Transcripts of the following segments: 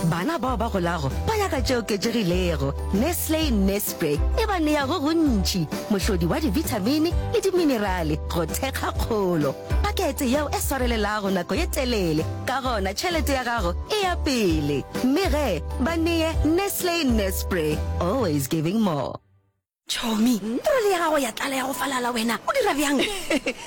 Bana bao ba golago ba ya ka tše oketšegilego. Nestle Nespre e ba nea go gontši, mohlodi wa dibithamini le diminerale go thekga kgolo. Pakete yeo e swarelelago nako ye telele, ka gona tšhelete ya gago e ya pele. Mme ge ba neye Nestle Nespre, always giving more. Chomi, troli ya gago ya tlala ya go falala wena o dira bjang?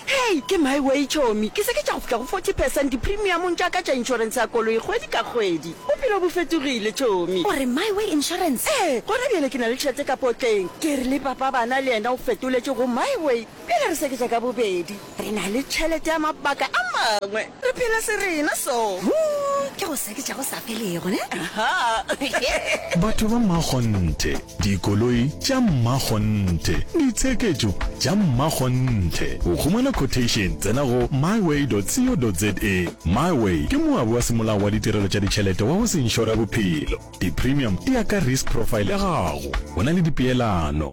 Hei, ke my way Chomi, ke se ke tša go fihla go 40 percent dipremiumong tša ka tša insurance ya koloi kgwedi ka kgwedi. Bophelo bo fetogile Chomi. O re my way insurance? Ee, gona bjale ke na le tšhelete ka potleng. Ke re le papa bana le yena o fetoletše go my way. Pele re seketša ka bobedi, re na le tšhelete ya mabaka a mangwe. Re phela serena so. Hoo ke go seketša go sa felego, ne? Aha. Batho ba mmakgonthe, dikoloi tša mmakgonthe, ditsheketšo tša mmakgonthe. Go humana quotation, tsena go myway.co.za. Myway ke moabi wa semolao wa ditirelo tša ditšhelete wa go se inšore bophelo. Di-premium di ya ka risk profile ya gago. Go na le dipeelano.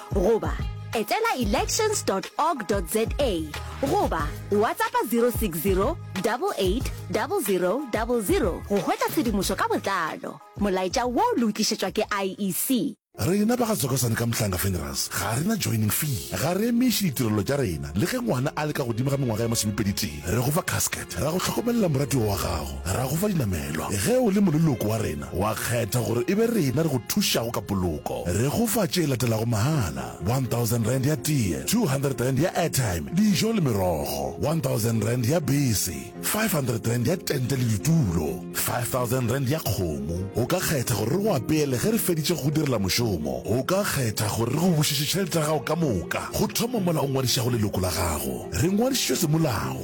goba etela elections org za goba whatsappa 060 880000 go hwetša tshedimošo ka botlalo molaetša wo le o tlišetšwa ke iec Rena ba ga Zokosane ka Mhlanga Funerals ga re na joining fee. Ga re emiše ditirelo tša rena le ge ngwana a le ka godimo ga mengwaga ya masomepedi-tee. Re go fa casket. Ra go hlokomelela moratiwa wa gago, ra go fa dinamelwa. Ge o le moleloko wa rena, wa kgetha gore e be rena re go thušago ka poloko. Re go fa tše latelago mahala, R1000 ya tee, R200 ya airtime, dijo le merogo, R1000 ya bese, R500 ya tente le ditulo, R5000 ya kgomo. O ka kgetha gore re go apeele ge re feditše go go direla mošomo. O ka kgetha gore re go bušetše tšhelete ya gago ka moka go thoma mola o ngwadišago leloko la gago. Re ngwadišitšwe semolao.